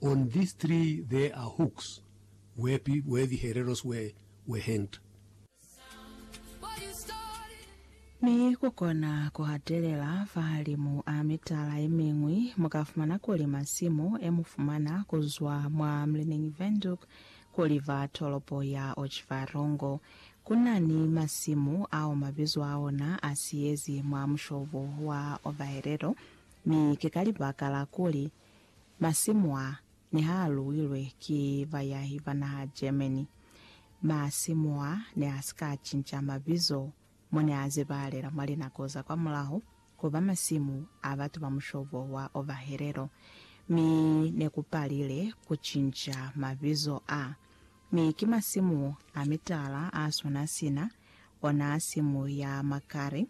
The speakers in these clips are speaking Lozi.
On this tree there are hooks where the hereros were hanged. Mi ku kona ku hatelela fahalimu a mitala ye miñwi, mu ka fumana kuli masimu e mu fumana ku zwa mwa Mlining Wenduk ku liva tolopo ya Otjiwarongo. Ku na ni masimu ao mabizo a ona a siyezi mwa mushobo wa Ovaherero, mi ki ka libaka la kuli Masimu a ne ha luilwe ki bayahi ba naha Germany. Masimu a ne a si ka cinca mabizo mo ne a zebahalela mwa linako za kwa mulaho ku ba masimu a batu ba mushobo wa ovahelelo, mi ne ku palile ku cinca mabizo a. Mi ki masimu a mitala a swana sina ona simu ya Makari.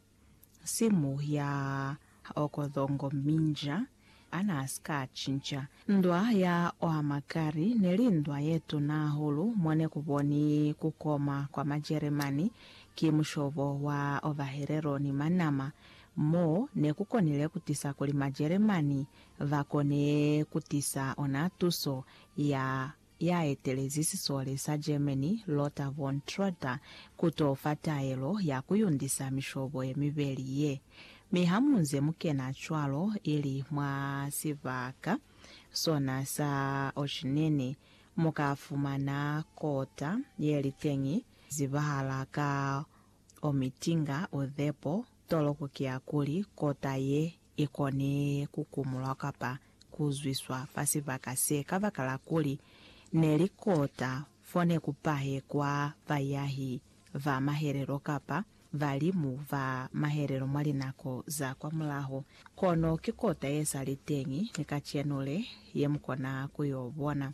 Simu ya Okothongo Minja ana si ka cinca. Ndwa ya Oamakari ne li ndwa ye tuna hahulu mo ne ku boni ku koma kwa Majeremani ki mushobo wa Ovaherero ni Manama, mo ne ku konile ku tisa kuli Majeremani ba kone ku tisa ona tuso ya ya etelezi sisole sa Germany Lothar von Trotha ku t'o fa taelo ya ku yundisa mishobo ye mibeli ye. Mi ha mu nze mu kena cwalo ili mwa sibaka sona sa Oceanene, mu ka fumana kota ye li teñi, zibahala ka Omitinga o Zepo, toloko ki ya kuli kota ye i kone ku kumulwa kapa ku zwiswa fa sibaka se kabakala kuli ne li kota fo ne ku pahekwa bayahi ba mahelelo kapa balimu ba mahelelo mwa linako za kwamulaho. Kono ki kota ye sa li teñi ni kacenu le, ye mu kona ku y'o bona.